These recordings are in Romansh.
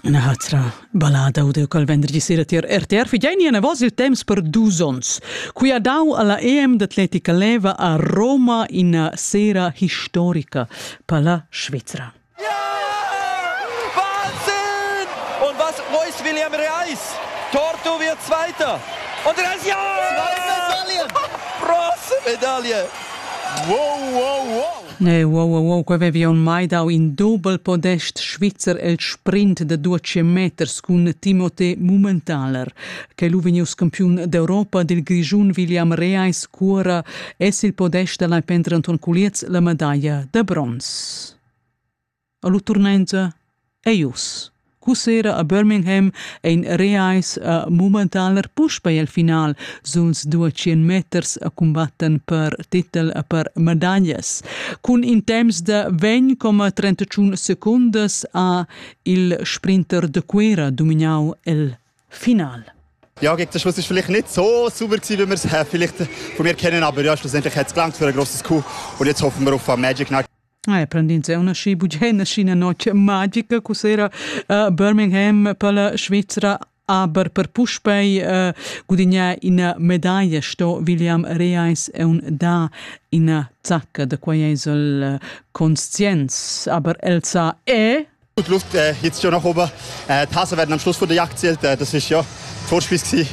Ina hatra ballada u col vendergi sera tier RTR figein ina voz il temps per dus ons. Qui ha dau alla EM d'atletica leva a Roma ina sera historica palla Svizra. Wahnsinn! Und was Reus William Reis? Torto wird Zweiter. Und Reis, ja! Zweite Medaille! Bronzemedaille! Wow, wow, wow! Ne, wow, wow, wow, quei vevi aunc mai dau in dobel podest svizzer el sprint da 12 meters cun Timothée Mummentaler, che lu vegnius campiun d'Europa dil Grischun William Reis Cuora es il podest da lai Pentre Anton Culiez la medaglia da bronz. A lu turnenza ei uss. Cussera a Birmingham ein reais a Mummentaler puspei el final suns dua tschien meters a cumbatten per titel e per medaglias. Cun in temps da 20,31 secundas ha il sprinter de Cuera dominau el final. Ja, gegen den Schluss war vielleicht nicht so sauber, wie wir es vielleicht von mir kennen, aber ja, schlussendlich hat es gelangt für ein grosses Coup und jetzt hoffen wir auf Magic Knight. Ah, è prendind una sci bugena sci una noce magica cos'era uh, Birmingham per la Svizzera aber per puspei uh, gudignar ina medaglia sto William Reis è un da ina zacca da quai è il conscienz aber Elsa è Gut Luft äh, jetzt schon noch oben. Äh, die Hasen werden am Schluss von der Jagd zählt, äh, das ist ja Vorspiel gewesen.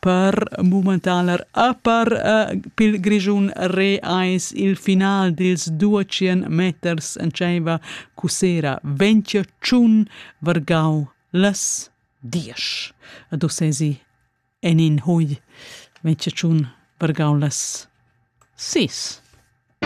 per mumentaner a per uh, pil Grischun re eis il final dils 200 meters en tscheiva cusera Ventschiun Vargau las dies. A do sesi en in hui Ventschiun Vargau las sis.